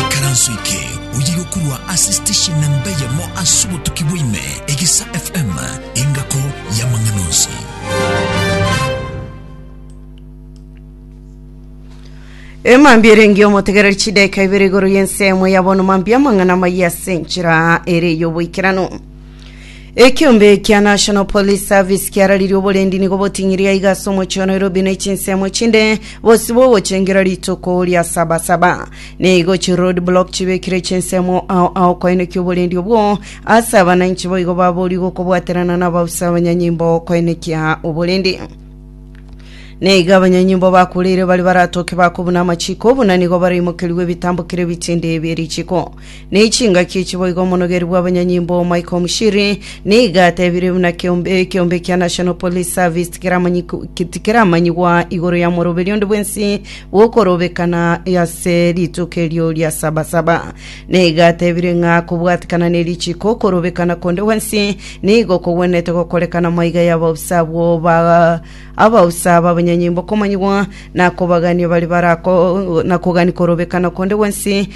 Ikaranso eke oyire okorwa ase station namba eyemo ase obotuki bwaime, Egesa FM, engako y'amang'ana onsi. emambia erengi omotegereri chidaika ibere igoro y'ensemo ya bono mambia amang'ana amaya ase enchera ere y'oboikeranu Ekiombe kia National Police Service kiararirie oborendi nigo boting'iria iga ase omochie wa Nairobi na echinsemo echinde bose bogochengera rituko ria sabasaba. Nigo chi road block chibekire chinsemo ao ao koenekia oborendi obwo ase abananchi boigo baborie gokobwaterana na abausa abanyanyimbo koenekia oborendi. Neiga abanyanyimbo bakureire bari baratoke bakobuna amachiko buna nigo baraimokerigwe ebitambokero ebitinde bie richiko. ne chingaki echiboigo omonogeria bw'abanyanyimbo Michael Mushiri nigo atebire buna kiombe ekiombe kia National Police Service tikeramanyiku- ki- tikeramanyigwa igoro ya moroberi onde bwensi bw'okorobekana ase rituko erio ria sabasaba. Nigo atebire ng'a kobwatikana ne richiko okorobekana konde gwensi nigo kogwenerete gokorekana maiga ya abaofisa abwo ba abaofisa b'abanyanyimbo komanyigwa na kobagania bari barako na kogania korobekana konde gwensi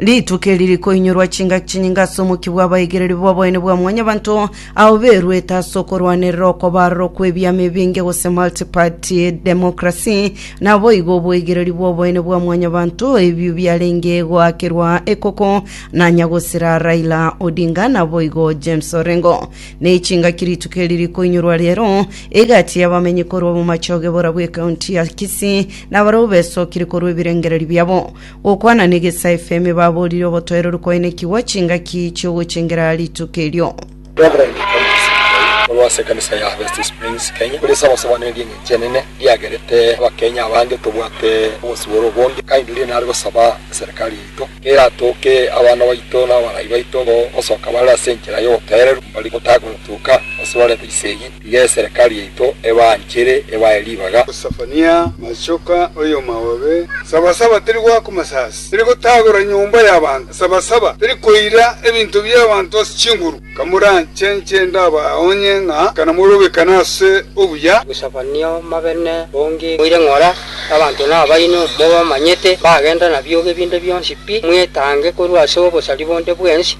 Rituko eri rikoinyorwa chingaki chinyinge ase omokia bw'abaigereri b'oboene bwa mwanyabanto ao beruete ase okorwanerera okobaarorwa kw'ebiama ebinge gose multiparty democracy, naboigo oboigereri bw'oboene bwa mwanyabanto ebio biarenge goakerwa ekoko nanya gosira Raila Odinga naboigo James Orengo. Ne chingaki rituko eri rikoinyorwa rero egati y'abamenyi korwa bomache ogebora bw'ekaunti ya Kisii nabarabwo besokirie korwa ebirengererio biabo. Gokwana negesae Femi baborire obotoereru koenekigwa chingaki chiogochengera rituko erio. Rev. Thomas Nkayi, omorwoti ase ekanisa ya Harvest Springs, Kenya, ore ase abasobanereria eng'encho enene riagerete Abakenya abange tobwate obosibore obonge, kainduria nare gosaba eserekari yaito eratoke abana baito na abarai baito gosoka bare ase enchera y'obotoereru mbari gotakotuka gose barente chisegi. Iga eserekari yaito ebaanchere, ebae ribaga. Sefania, Machoka, oyomaobe, Sabasaba teri goaka omosaasi, teri gotagora nyomba y'abanto, Sabasaba teri koira ebinto bi'abanto ase chinguru, Kamoranche inche ndabaonye ng'a kanamorobekane ase obuya. Sefania, Omobe ne bonge moire ng'ora, abanto nabaino, mobamanyete, bagenda nabiogo ebinde bionsi pi, mwetange korwa ase obosari bonde bwensi.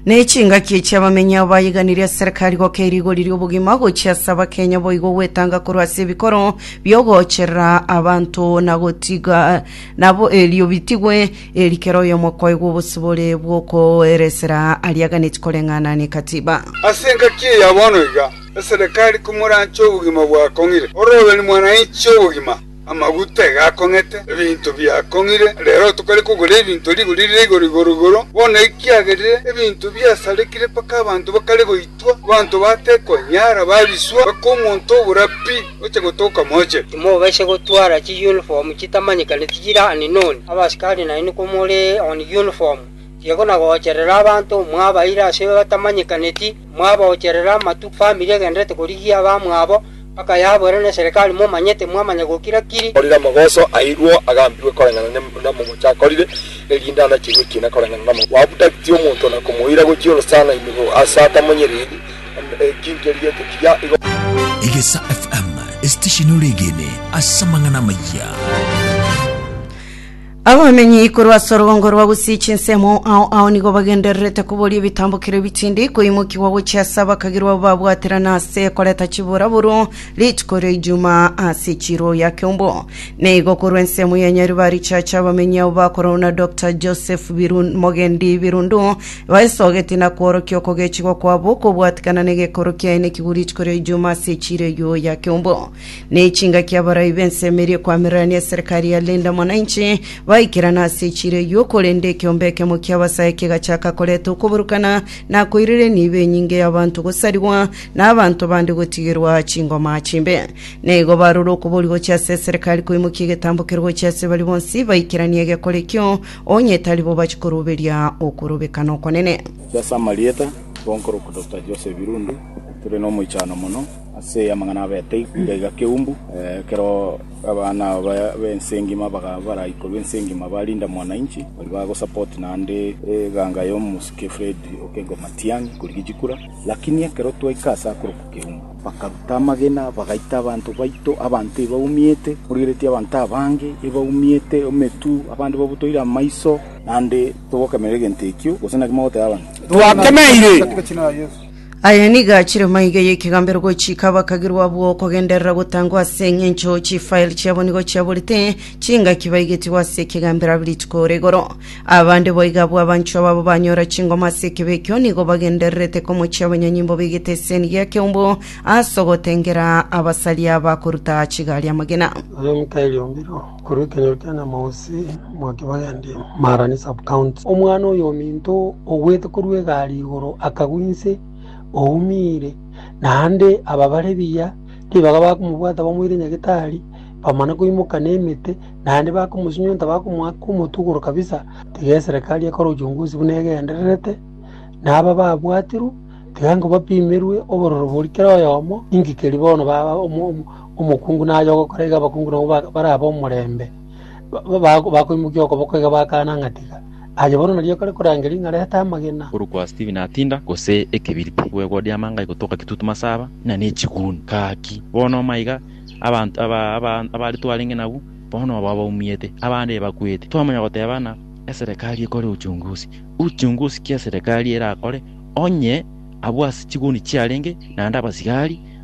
Ne chingaki echi abamenyi abo bayeganirie ase serikali goka erigori ri'obogima gochia ase abakenya boigo gwetanga korwa ase ebikoro biogocherera abanto na gotiga nabo erio bitigwe eri kera oyomo kwaigwa obosibore bw'okoeresera ariaganeti koreng'ana nekatiba. Ase engaki eya bono iga, eserekari komoranche obogima bwakong'ire, ororoberi mwananchi obogima. Amaguta egakong'ete, ebinto biakong'ire, reero tokare kogora ebinto rigori rire igoro igoro igoro. Bono ekiagerire ebinto biasarekire mpaka abanto bakare goitwa, abanto batekonyara babiswa mpaka omonto obora pi oche gotoka moche. Timobaisa gotwara chiyunifomu chitamanyekaneti chire Aninoni, abasikari nainwe komore on yunifomu, tiga na goocherera abanto, mwabaire ase batamanyekaneti. mwaboocherera amatuko famiri egendererete korigia abamwabo mpaka yaboerwe n'eserekari momanye timwamanya gokira-kiri. Orire amagoso airwo agambigwe koreng'ana namomoche akorire, erinde anachirwe ekiina koreng'ana namomoche. Gwabutagitie omonto na komoira gochia orosana ime bo ase atamonyereri, ekinki erigetie kiria igo. Egesa FM, esitesheni ore egene ase amang'ana amayia. Abamenyi korwa ase orugongo rwa Gusii chinsemo ao ao nigo bagendererete koboria ebitambokero ebitindi koimokigwa gochia ase abakagirwa abo babwaterana ase koreta chiburaburu rituko ria Ijumaa ase echiro ya Kiombo. Na igo korwa ensemo ya Nyeri barichache abamenyi abo bakorwa na Dr. Joseph Birun Mogendi Birundu baesogeti na kworokia okogechigwa kwabo kobwatikana na egekoro kiaye nekigwe rituko ria Ijumaa ase echiro eyio ya Kiombo. na echingaki abarai b'ensemo eria ekwamirirania eserekari ya Linda Mwananchi baikerana ase echiro eyio, korende ekeombe ekemo ki'abasae kegachaka koreta okoburukana na koirerenia ibe enyinge y'abanto gosarigwa, na abanto bande gotigerwa chingoma chimbe. Na igo barure okobori gochia ase eserekari koimokia egetambokero gochia ase baria bonsi baikeranie egekora ekio, onye tari bo bachikoruberia okorobekana okonene. Inche ase amarieta, Bonkoro Doctor Joseph Irundu, tore nomoichano mono Ase amang'ana abete igaiga keumbu, ekero abana aba b'ense engima bakaba baraikorwa ense engima ba Linda Mwananchi, baria bagosupport naende eganga y'omosike Fred Okengo Matiang'i korigia chikura, lakini ekero twaika ase akorokwa Keumbu, bakaruta amagena bagaita abanto baito, abanto ebaumiete, morigeretie abanto abange ebaumiete emetwe, abande babotoire amaiso, naende togokemerera egento ekio, gose naki mogoteba abanto? Twakemeire! Aya nigo achire maiga y'ekegambero gochika abakagirwa abwo okogenderera gotangwa ase engencho chifael chiabo nigo chiaborete chingaki baigetigwe ase ekegambero abi rituko ore igoro. Abande boiga abwo abanchwa babo banyora chingoma ase ekebe ekio nigo bagendererete komochia abanyanyimbo begete eseni gia keumbu ase ogotengera abasaria bakoruta chigari amagena. Ore nkairiombirwe Korwa ekenyoro kia Nyamausi mwake bagendia Marani Sub-county, omwana oyominto ogwete korwa egari igoro akagwa inse oumire, naende ababare buya ribaga bakomobwata bamoire nyagetari, bamana koimoka nemete naende bakomosinyunta bakomoaka omotwe igoro kabisa. Tiga eserekari ekore uchunguzi buna egendererete, na aba babwatirwe tiga nkobapimerwe obororo boria kera oyomo inki keria bono baba Omokungu naye ogokora iga abakungu nabwo barabe omorembe, bakoimokia okoboko iga bakana ng'a tiga. Aye bono nario ekore korangeria ng'a reta amagena. Korwa kwa Stephen Atinda gose ekebiriti gwegwodia amanga igotoka kitutu masaba na nechiguni gaki bono omaiga abanto aba aba abare twarenge nabu bono obo abaumiete abande ebakwete twamanya goteba na eserekari ekore uchunguzi uchunguzi ki eserekari erakore onye abwo ase chiguni chiarenge naende abasigari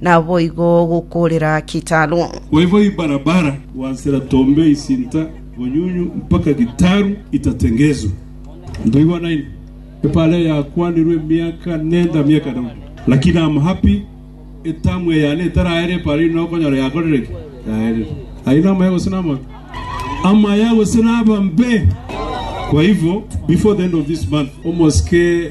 naboigo gokoorera Kitalu. Boigo ibarabara gwansera Tombe isinta Bonyunyu mpaka Kitalu itatengezwe. Ntoigwa naini epara eyakwanirwe emiaka nenda miaka Daudi, lakini am happy etamu eyane etaraere epara ino okonyora yakorire ki? Yaerire. Ayio namaya gose namabe? Amaya gose nabambe? Kwa hivyo before the end of this month omosike